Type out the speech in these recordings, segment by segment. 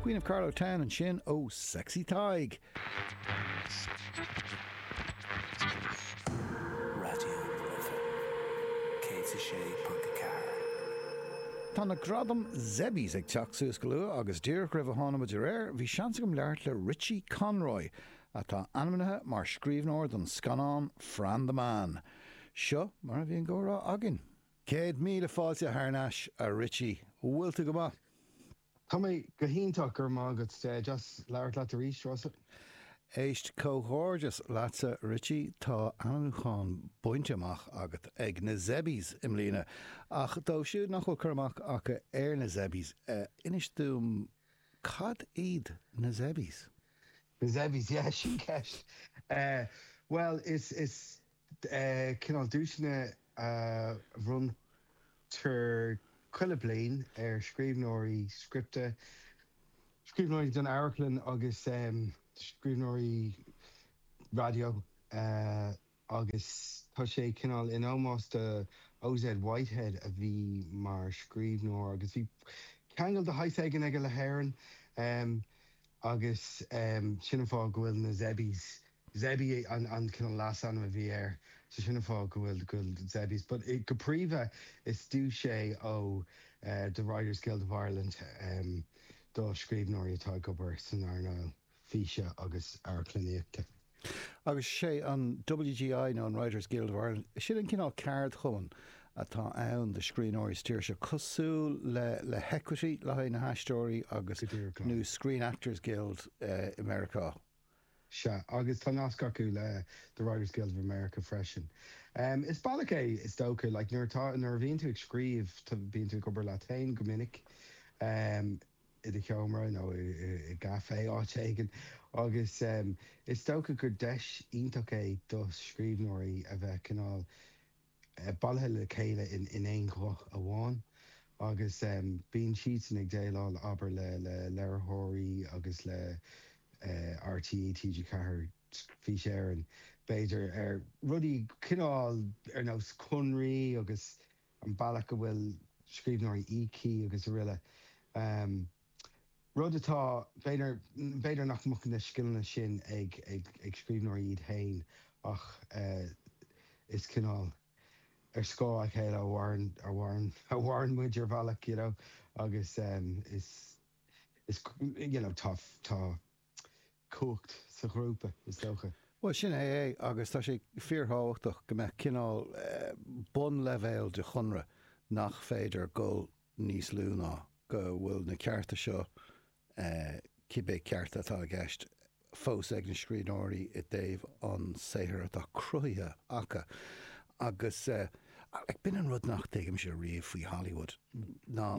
Queen of Carlow Town ansin, oh sexy Tig. Tá na gradaim Zebbies ag teacht suas go luath agus díreach roimh a tháinig muid ar aer, bhí seans agam labhairt le Richie Conroy, atá ainmnithe mar scríbhneoir don scannán Fran the Man. Seo mar a bhí an comhrá againn. Céad míle fáilte thar n-ais, a Richie. Bhfuil tú go maith? Tá mé go hiontach, go raibh maith agat. Deas labhairt leat arís, Rossa. Éist, comhghairdeas leatsa, Richie, tá ainmniúchán bainte amach agat ag na Zebbies i mbliana. Ach dóibh siúd nach bhfuil cur amach acu ar na Zebbies, inis dúinn, cad iad na Zebbies? Na Zebbies, yeah, sin ceist. Bhuel, is, is, cineál duaiseanna a bhronntar chuile bliain ar scríbhneoirí scripte, scríbhneoirí don amharclann agus scríbhneoirí raidió agus tá sé cineál in ómós do O.Z. Whitehead a bhí mar scríbhneoir agus bhí ceangal de shaghas éigin aige le hÉirinn agus sin an fáth go bhfuil na Zebbies Zebbie an cineál leasainm a bhí air, so sin an fáth go bhfuil Zebbies, but go príomha is duais é ó The Writers Guild of Ireland do scríbhneoirí atá ag obair san earnáil físe agus amharclannaíochta. Agus sé an WGI nó an Writers Guild of Ireland, sin an cineál ceardchumann atá ann do scríbhneoirí sa tír seo, cosúil le le hEquity le haghaidh na haisteoirí agus nó Screen Actors Guild i Meiriceá. Sea, agus tá nasc acu le The Writers Guild of America freisin. Is bealach é, is dócha, like nuair atá, nuair a bhíonn tú ag scríobh, bíonn tú ag obair leat féin go minic, i do sheomra nó i gcafé, áit éigin, agus is dócha gur deis iontach é do scríbhneoirí a bheith cineál, bailithe le chéile in aon ghuth amháin agus bíonn siadsan ag déileáil abair le léiritheoirí agus le RTÉ TG4, Fís Éireann, b'fhéidir, ar rudaí cineál ar nós conraí agus an bealach a bhfuil scríbhneoirí íoctha agus araile. Rud atá, b'fhéidir, b'fhéidir nach mbeadh na scileanna sin ag scríbhneoirí iad féin ach is cineál ar scáth a chéile a mhaireann muid ar bhealach you know agus is is you know tá tá cumhacht sa ghrúpa, is dócha. Bhuel, sin é é agus tá sé fíorthábhachtach go mbeadh cineál bunleibhéal de chonradh nach féidir dul níos lú, ná go bhfuil na cearta seo, cibé cearta atá i gceist, fós ag na scríbhneoirí i dtaobh an saothar atá cruthaithe acu. Agus b'in an rud nach dtuigimse riamh faoi Hollywood, ná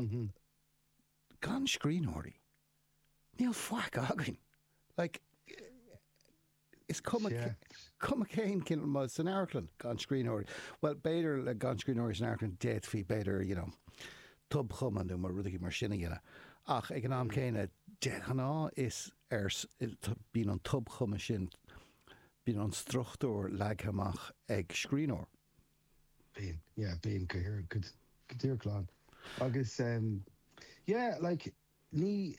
gan scríbhneoirí, níl faic againn. Like. Is cuma cén ceann, san amharclann gan scríbhneoirí. Bhuel, b'fhéidir le gan scríbhneoirí san amharclann d'fhéadfaí, b'fhéidir, you know, tobchumadh nó rudaí mar sin a dhéanamh. Ach ag an am céanna, de ghnáth is ar, bíonn an tobchumadh sin, bíonn an struchtúr leagtha amach ag scríbhneoir. Bíonn, yeah, bíonn go díreach, go díreach glan. Agus, yeah, like, Ní,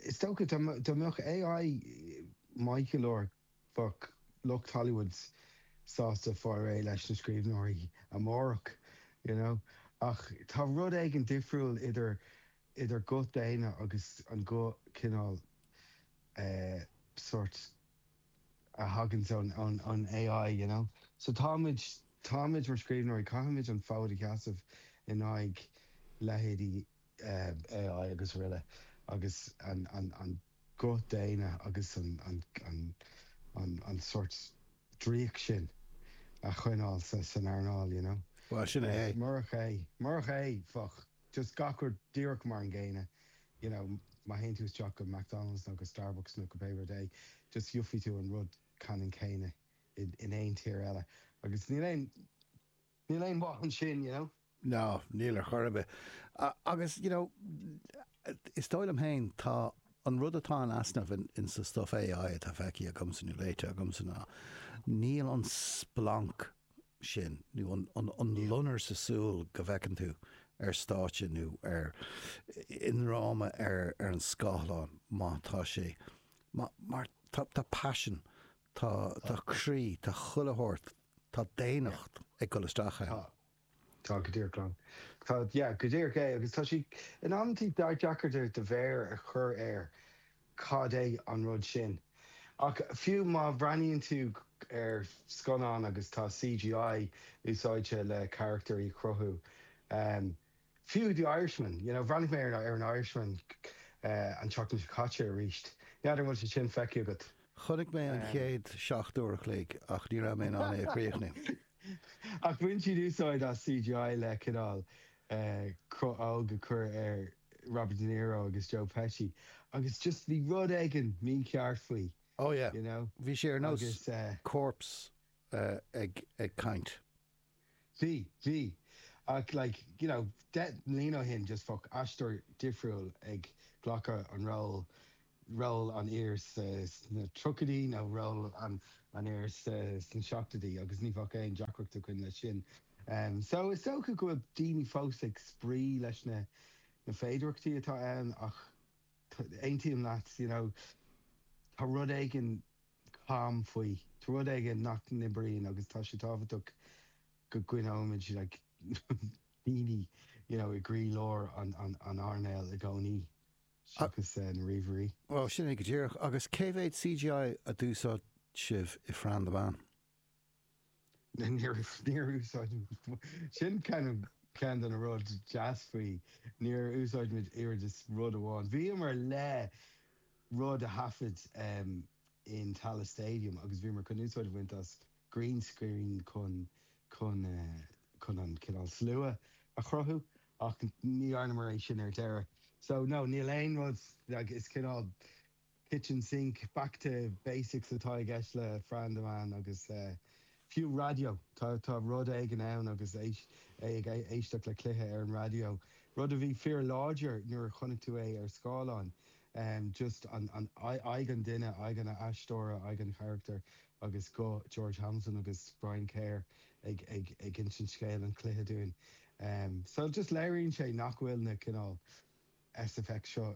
is dócha, dá mbeadh AI níos fearr bheadh lucht Hollywood sásta fáil réidh leis na scríbhneoirí amárach, you know. Ach tá rud éigin difriúil idir idir guth daonna agus an guth cineál eh sort a thaganns ón ón ón AI, you know. So táimid táimid mar scríbhneoirí, caithfimid an fód a sheasamh in aghaidh leithéidí AI agus araile, agus an guth daonna agus an sort draíocht sin a choinneáil san earnáil, you know. Bhuel, sin é. Murach é, murach é, bheadh just gach rud díreach mar an gcéanna, you know, má théann tú isteach go McDonald's nó go Starbucks nó go pé rud é, just gheobhaidh tú an rud ceannann céanna in aon tír eile. Agus níl aon. Níl aon mhaith ann sin, you know. No, níl ar chor ar bith. Agus, you know, is dóigh liom féin, tá an rud atá in easnamh insa stuff AI atá feicthe agamsa nó léite agamsa ná níl an splanc sin nó an loinnir sa súl go bhfeiceann tú ar stáitse nó ar i ndráma ar an scáileán má tá sé mar tá passion Tá croí, tá chuile shórt, tá daonnacht ag dul isteach ann. Tá, tá go díreach ann. Tá, yeah, go díreach é agus tá sé in amantaí deacair do mhéar a chur air cad é an rud sin. Ach fiú má bhreathnaíonn tú ar scannán agus tá CGI úsáidte le carachtar a chruthú, Fiú The Irishman, you know, bhreathnaigh mé ar an Irishman an tseachtain seo caite arís, n'fheadar an bhfuil sé sin feicthe agat? Chonaic mé an chéad seacht uair a chloig ach ní raibh mé in ann é a chríochnú. Ach bhain siad úsáid as CGI le cineál cruth óg a chur ar Robert De Niro agus Joe Pesci agus just bhí rud éigin mícheart faoi, Oh yeah, you know, bhí sé ar nós corpse ag caint. Bhí, bhí. Ach like, you know, deich mbliana ó shin, just bheadh aisteoir difriúil ag glacadh an ról, ról an fhir sna tríochaidí nó ról an fhir sna seachtóidí agus ní bheadh aon deacracht againn leis sin. So is dócha go bhfuil daoine fós ag spraoi leis na féidearthachtaí atá ann ach aontaím leat, you know, tá rud éigin, cam faoi. Tá rud éigin nach n-oibríonn agus tá sé tábhachtach go gcoinneoimid like daoine you know i gcroílár an earnáil i gcónaí seachas na ríomhairí. Bhuel, sin é go díreach. Agus cé mhéad CGI a d'úsáid sibh i Fran the Man? Níor úsáid sin ceann de na rud deas faoi, níor úsáid muid oiread is rud amháin. Bhíomar le rud a thaifead in Tallaght Stadium agus bhíomar chun úsáid a bhaint as green screen chun, chun, chun an cineál slua a chruthú ach ní dhearnamar é sin ar deireadh. So, no, níl aon rud, is cineál. kitchen sink, back to basics atá i gceist le Fran the Man agus fiú raidió, tá rud éigin ann agus é ag éisteacht le cluiche ar an raidió, rud a bhí fíorláidir nuair a chonaic tú é ar scáileán, just an aghaidh an duine, aghaidh an aisteora, aghaidh an charachtair agus guth George Hamilton agus Brian Kerr ag insint scéal an chluiche dúinn. So just léiríonn sé nach bhfuil na cineál SFX seo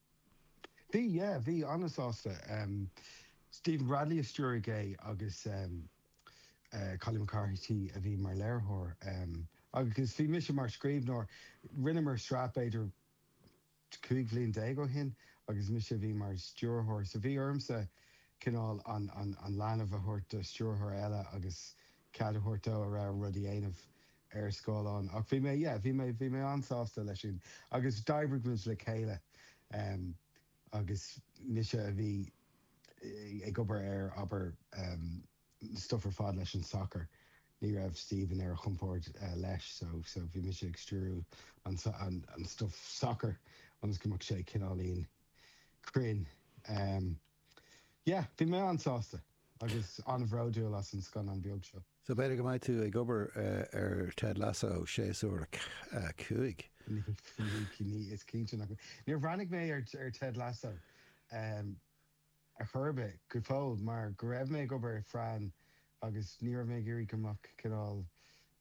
Bhí, yeah, bhí an-sásta. Stephen Bradley a stiúraigh é agus Collie McCarthy a bhí mar léiritheoir agus bhí mise mar scríbhneoir. Rinneamar sraith b'fhéidir 15 bhliain ó shin agus mise a bhí mar stiúrthóir, so bhí ormsa cineál an leanbh a thabhairt do stiúrthóir eile agus cead a thabhairt dó a rogha rud a dhéanamh. ar scáileán. Ach bhí mé, yeah, bhí mé, bhí mé an-sásta leis sin. Agus d'oibrigh muid le chéile. Agus mise a bhí ag obair ar, abair, an stuff ar fad leis an sacar. Ní raibh Stephen ar a chompord leis, so, so bhí mise ag stiúrú an, an stuff sacair ionas go mbeadh sé cineáilín cruinn. Yeah, bhí mé an-sásta agus an-bhródúil as an scannán beag seo. So b'fhéidir go mbeidh tú ag obair ar Ted Lasso séasúr a cúig? Ní, is cinnte nach mbeidh. Níor bhreathnaigh mé ar Ted Lasso ar chor ar bith, go fóill, mar go raibh mé ag obair ar Fran agus ní raibh mé ag iarraidh go mbeadh cineál,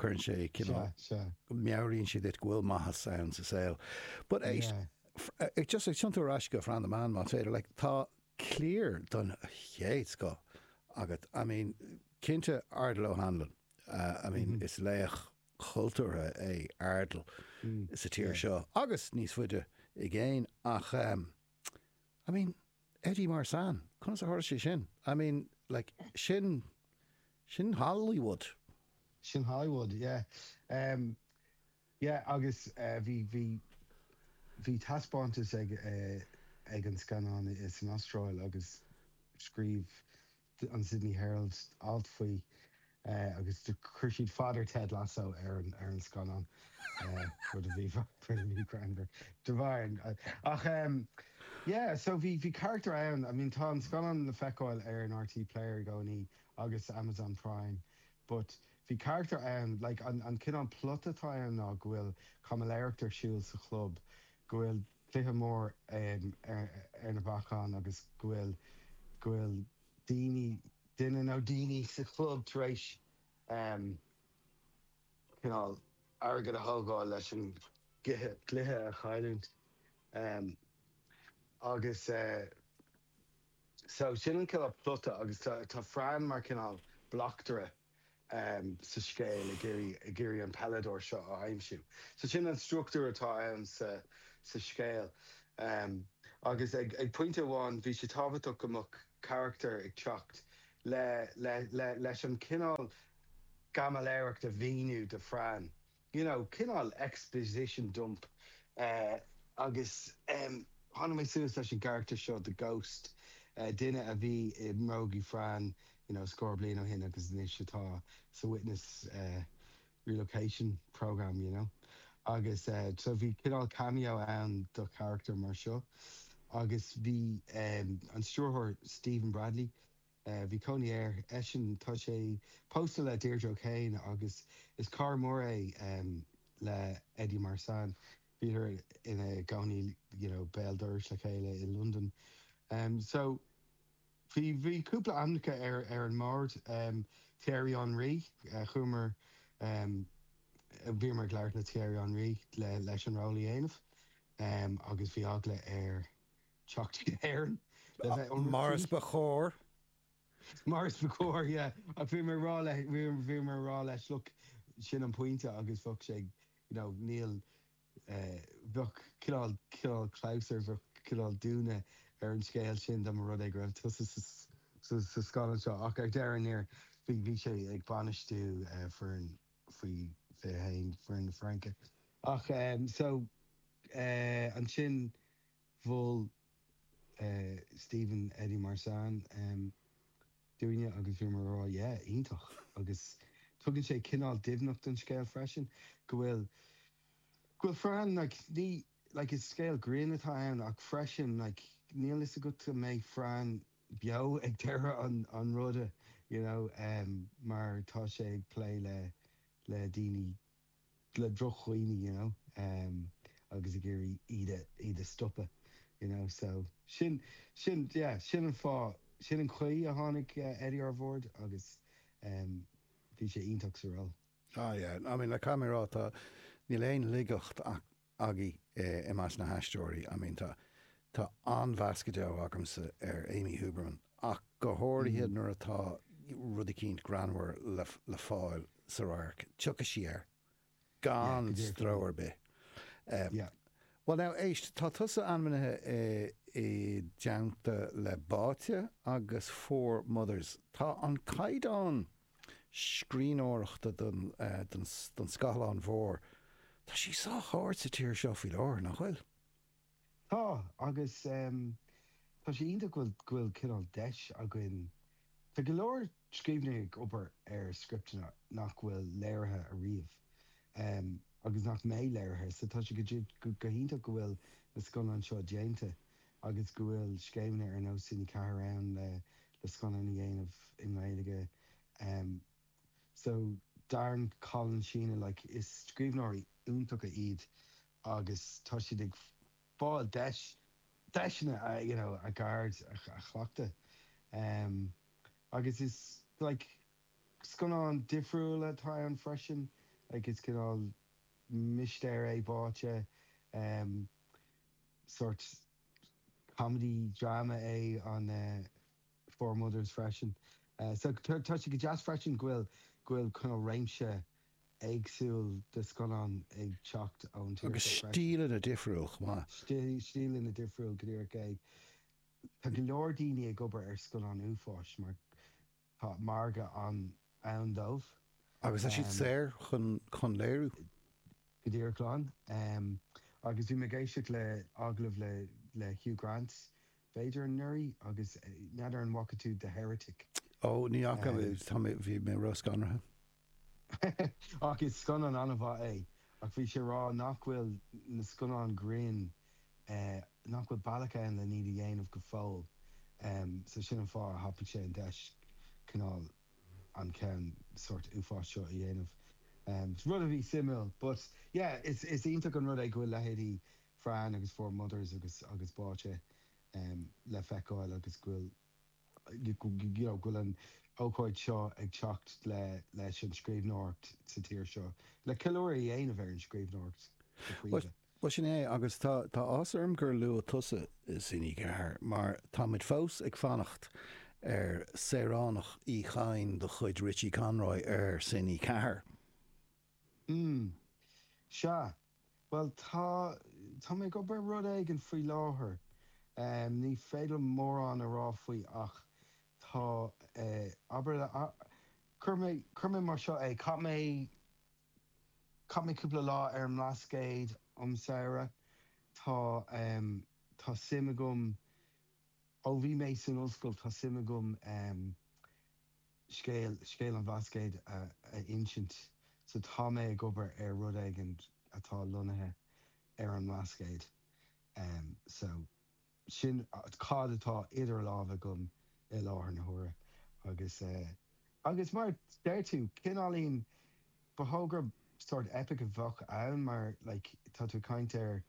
Cuireann sé cineál, meabhraíonn sé duit go bhfuil maitheas ann sa saol. But é, just ag tiontú ar ais go Fran the Man má's féidir, like tá cliar don chéad scoth agat. I mean, cinnte Ardal O'Hanlon, I mean is laoch cultúrtha é Ardal sa tír seo agus níos faide i gcéin ach, I mean, Eddie Marsan? Conas a tharla sé sin? I mean, like, sin, sin Hollywood. Sin Hollywood, yeah. Em, yeah, agus, eh, bhí, bhí, bhí taispeántas ag, eh, ag an scannán in, san Astráil agus scríobh, an Sydney Herald alt faoi agus chuir siad Father Ted Lasso ar an scannán, rud a bhí thar a bheith greannmhar de bharr an. Ach yeah, so bhí carachtar ann, I mean tá an scannán le feiceáil ar an RTÉ Player i gcónaí agus Amazon Prime, but bhí carachtar ann, like an cineál plota atá ann ná go bhfuil caimiléireacht ar siúl sa chlub, go bhfuil, cluiche mór ar na bacáin agus go bhfuil go bhfuil daoine duine nó daoine sa chlub tar éis cineál airgead a thógáil leis an gcluiche cluiche a chailliúint agus so sin an cineál plota agus tá tá Fran mar cineál bleachtaire sa scéal ag iarraidh an peileadóir seo a aimsiú. So sin an struchtúr atá ann sa scéal. Agus ag pointe amháin bhí sé tábhachtach go mbeadh carachtar ag teacht leis an gcineál caimiléireacht a mhíniú do Fran. you know, cineál exposition dump eh agus em tháinig mé suas leis an gcarachtar seo, the ghost, eh duine a bhí i mbrógaí Fran you know scór bliain ó shin agus anois atá sa witness eh relocation program you know agus eh so bhí cineál cameo ann do charachtar mar seo agus bhí em an stiúrthóir Stephen Bradley Bhí cónaí air, eisean, tá sé pósta le Deirdre O'Kane agus is cara mór é le Eddie Marsan. Bhíodar ina gcónaí you know béal dorais le chéile i Londain. So bhí bhí cúpla ainmneacha ar ar an mbord, Thierry Henry, chuamar, bhíomar ag labhairt le Thierry Henry le leis an ról a dhéanamh agus bhí eagla ar teacht go hÉirinn le bheith Mar is ionraic. ba chóir. Mar is ba chóir, yeah. Ach bhí mé ag rá le, bhí mé ag rá leis, look, sin an pointe agus bheadh sé, you know, níl, bheadh cineál, cineál clabhsúir, bheadh cineál dúnadh ar an scéal sin dá mba rud é go raibh tusa sa, sa, sa scannán seo. Ach ar deireadh thiar, bhí, bhí sé ag bainistiú foireann faoi fiche haon, foireann na Fraince. Ach, so, ansin. Mhol Stephen Eddie Marsan dúinne agus bhíomar ag rá yeah, iontach. Agus tugann sé cineál doimhneacht don scéal freisin, go bhfuil, go bhfuil Fran, like, ní, like, is scéal grinn atá ann ach freisin, like, níl fhios agat an mbeidh Fran beo ag deireadh an, an ruda, you know, mar tá sé ag plé le, le daoine. le drochdhaoine you know agus ag iarraidh iad iad a stopadh you know so sin sin yeah sin an fáth sin an chaoi a tháinig Eddie ar bhord agus em bhí sé iontach sa ról. Ah yeah I mean le caithfidh mé a rá tá níl aon laigeacht agaibh i measc na haisteoirí. I mean, tá, tá an-mheas go deo agamsa ar Amy Huberman ach go háirithe nuair atá rud eicínt greannmhar le, le fáil sa radharc, tiocfaidh sí air gan stró ar bith. Yeah. Bhuel now, éist, tá tusa ainmnithe i, i dteannta le Báite agus Four Mothers. Tá an caighdeán scríbhneoireachta don scáileán mhór. Tá sé sách ard sa tír seo faoi láthair, nach bhfuil? Tá, agus tá sé iontach go bhfuil cineál deis againn. Tá go leor scríbhneoirí ag obair ar scripteanna nach bhfuil léirithe ariamh agus nach mbeidh léirithe, so tá sé go hiontach go bhfuil na scannáin seo déanta. agus go bhfuil scéimeanna ar nós Cine 4 ann le scannáin a dhéanamh i nGaeilge so Darren, Colin, Sheena like is scríbhneoirí iontacha iad agus tá siad ag fáil deis, deiseanna a you know a gceird a chleachtadh agus is like scannáin difriúla atá ann freisin like is cineál mistéir é Báite. sórt comedy drama é an Four Mothers freisin. So tá sé go deas freisin go bhfuil go bhfuil cineál réimse éagsúil de scannáin ag teacht ón tír Agus seo freisin. stíleanna difriúil chomh maith. Stíleanna difriúil, go díreach é. Tá go leor daoine ag obair ar scannáin uafáis mar. Tá margadh ann ann dóibh. Agus tá siad saor chun léiriú. Go díreach glan. Agus bhí mé ag éisteacht le agallamh le Hugh Grant, b'fhéidir, anuraidh, agus n'fheadar an bhfaca tú The Heretic? Ó, ní fhaca, bhí mé ró-scanraithe. Ach is scannán an-mhaith é. Ach bhí sé a rá nach bhfuil na scannáin grinn, nach bhfuil bealach ann lena iad a dhéanamh go fóill. So sin an fáth a thapaigh sé an deis cineál an ceann sórt uafáis seo a dhéanamh. Rud a bhí suimiúil. But yeah, is iontach an rud é go bhfuil leithéidí Fran agus Four Mothers agus Báite le feiceáil agus go bhfuil, go bhfuil an ócáid seo ag teacht leis an scríbhneoireacht sa tír seo, le ceiliúradh a dhéanamh ar an scríbhneoireacht Bhuel, sin é, agus tá a fhios agam gur luaigh tusa Cine4, mar táimid fós ag fanacht ar Saoránach Uí Chadhain de chuid Richie Conroy ar Cine4. Sea, Bhuel, tá, tá mé ag obair ar rud éigin faoi láthair. Ní féidir liom mórán a rá faoi ach tá, abair, cuirfidh mé, cuirfidh mé mar seo é, chaith mé, chaith mé cúpla lá ar an mBlascaod um samhradh. Tá, tá suim agam, ó bhí mé san ollscoil, tá suim agam. scéal, scéal an Bhlascaoid a insint. So tá mé ag obair ar rud éigin atá lonnaithe ar an mBlascaod. So sin cad atá idir lámha agam i láthair na huaire. Agus agus mar a deir tú, cineáilín, ba dhóigh gurb sórt eipic a bheadh ann mar like tá tú ag caint ar,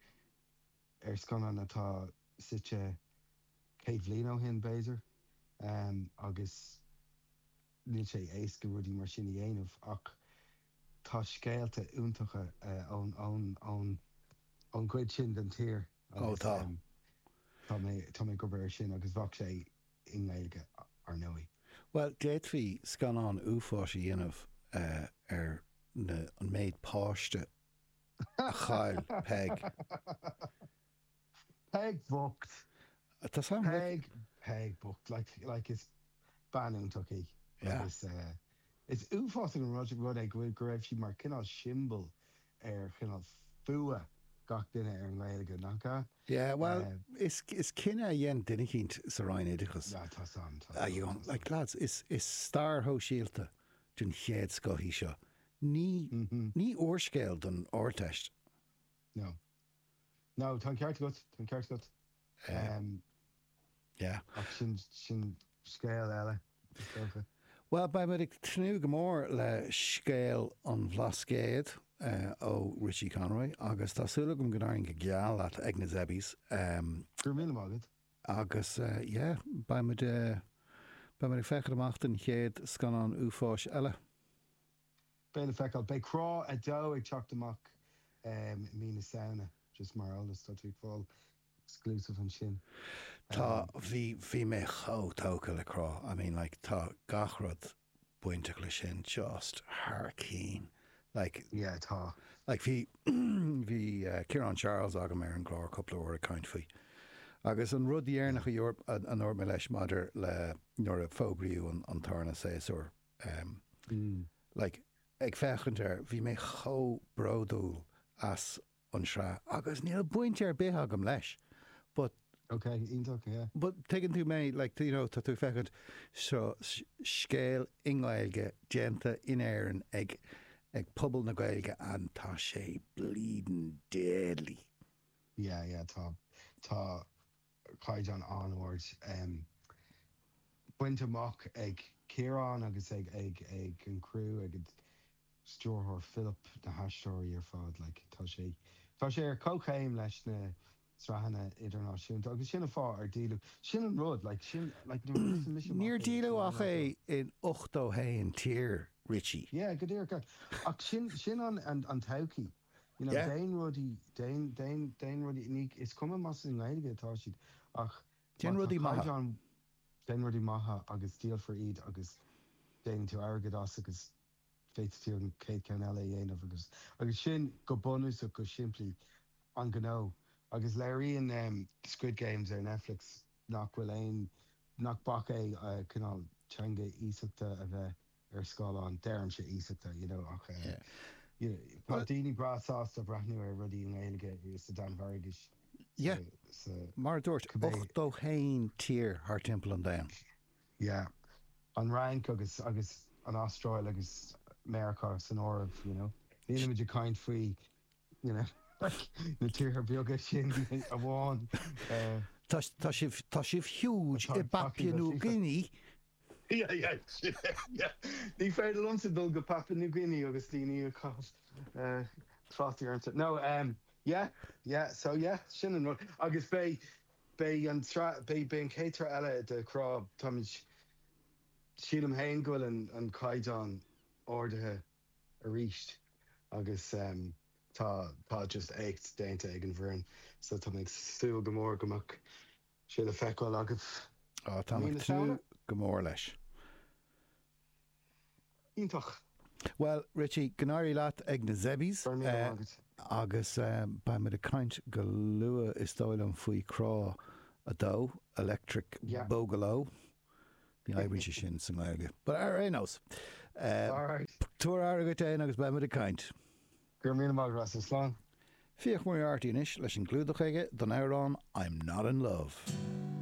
ar scannán atá suite céad bhliain ó shin, b'fhéidir, agus níl sé éasca rudaí mar sin a dhéanamh. Ach tá scéalta iontacha ón gcuid sin den tír agus tá mé ag obair ar sin, agus bheadh sé i nGaeilge, ar ndóigh. Bhuel, d'fhéadfaí scannán uafáis a dhéanamh ar an méid páiste a chaill Peig. Peig bhocht! Tá a fhios agam. Peig, Peig bhocht, like, is bean fhiúntach í. Yeah. Agus is uafásach an rud é go bhfuil, go raibh sí mar chineál siombail ar chineál fuath gach duine ar an nGaeilge, nach ea? Yeah, bhuel, is cinneadh a dhein duine eicínt sa Roinn Oideachais. Yeah, tá a fhios agam, tá a fhios agam. Like, lads, is stair shóisialta den chéad scoth í seo. Ní ní úrscéal don Ardteist. No. No, tá an ceart agat, tá an ceart agat. Em, yeah, ach sin, sin scéal eile, is dócha. Bhuel, beidh muid ag tnúth go mór le scéal an Bhlascaoid ó Richie Conroy agus tá súil agam go n-éiríonn go geal leat ag na Zebbies. Em. Go raibh míle maith agat. Agus, yeah, beidh muid, beidh muid ag féachaint amach don chéad scannán uafáis eile. Beidh le feiceáil. Beidh Crá 2 ag teacht amach i mí na Samhna, just mar eolas. Tá tú ag fáil exclusive ansin. Tá, bhí, bhí mé chomh tógtha le Crá, I mean like tá gach rud bainteach leis sin just thar cinn, like, Yeah, tá. like bhí, bhí Ciarán Charles agam ar an gclár cúpla uair ag caint faoi agus an rud Yeah. dheireanach a dúirt, a ndúirt mé leis maidir le, nuair a fógraíodh an, an tarna séasúr, em. like, ag féachaint air, bhí mé chomh bródúil as an tsraith agus níl baint ar bith agam leis but, Ok, iontach, yeah. but tuigeann tú mé, like, you know, tá tú ag féachaint, seo scéal i nGaeilge déanta in Éirinn ag ag pobal na Gaeilge and tá sé bleeding deadly. Yeah, yeah, tá, tá. caighdeán an-ard bainte amach ag Ciarán agus ag an gcriú, ag an stiúrthóir Philip, na haisteoirí ar fad. Tá sé ar comhchéim leis na sraitheanna idirnáisiúnta agus sin an fáth ar díoladh. Sin an rud. Níor díoladh ach é in ochtó haon tír, Richie. Yeah, go díreach. Ach sin an todhchaí. you know, Yeah. déan rudaí, déan, déan, déan rudaí, ní, is cuma más i nGaeilge atá siad ach Déan má tá rudaí maithe. caighdeán, déan rudaí maithe agus díolfar iad agus déanann tú airgead as agus féadfaidh tú an chéad cheann eile a dhéanamh agus, agus sin go bunúsach, go simplí an gnó. Agus léiríonn ehm Squid Games ar Netflix nach bhfuil aon, nach bac é cineál teanga iasachta a bheith. ar scáileán, deirimse iasachta, you know ach eh tá daoine breá sásta breathnú ar rudaí i nGaeilge sa Danmhairgis, sa, Yeah, mar a dúirt, cibé. ochtó haon tír thar timpeall an domhain. Yeah, an Fhrainc agus, agus an Astráil agus Meiriceá san áireamh, you know. Nílimid ag caint faoi na tíortha beaga sin amháin. Tá sibh huge i bPapua New Guinea. Ní féidir liomsa dul go Papua New Guinea agus daoine a chaitheamh trátaí ormsa. No, yeah, yeah, so yeah, sin an rud. Agus beidh an chéad tsraith eile de Crá, táimid, sílim féin go bhfuil an caighdeán ardaithe. arís agus tá just éacht déanta ag an bhfoireann so tá mé ag súil go mór go mbeidh sé le feiceáil agaibh mí na Samhna. Á, tá mé too. Go mór leis. Iontach. Bhuel, Richie, go n-éirí leat ag na Zebbies. Go raibh míle maith agat. agus beidh muid ag caint go luath, is dóigh liom, faoi Crá 2, Yeah. Electric Boogaloo. Ní oibríonn sé sin sa nGaeilge. But ar aon nós, tabhair aire dhuit fhein agus beimid ag caint. Go raibh míle maith agat as. Slán. Fiach Moriarty anois leis an gclúdach aige don amhrán 'I'm Not In Love'.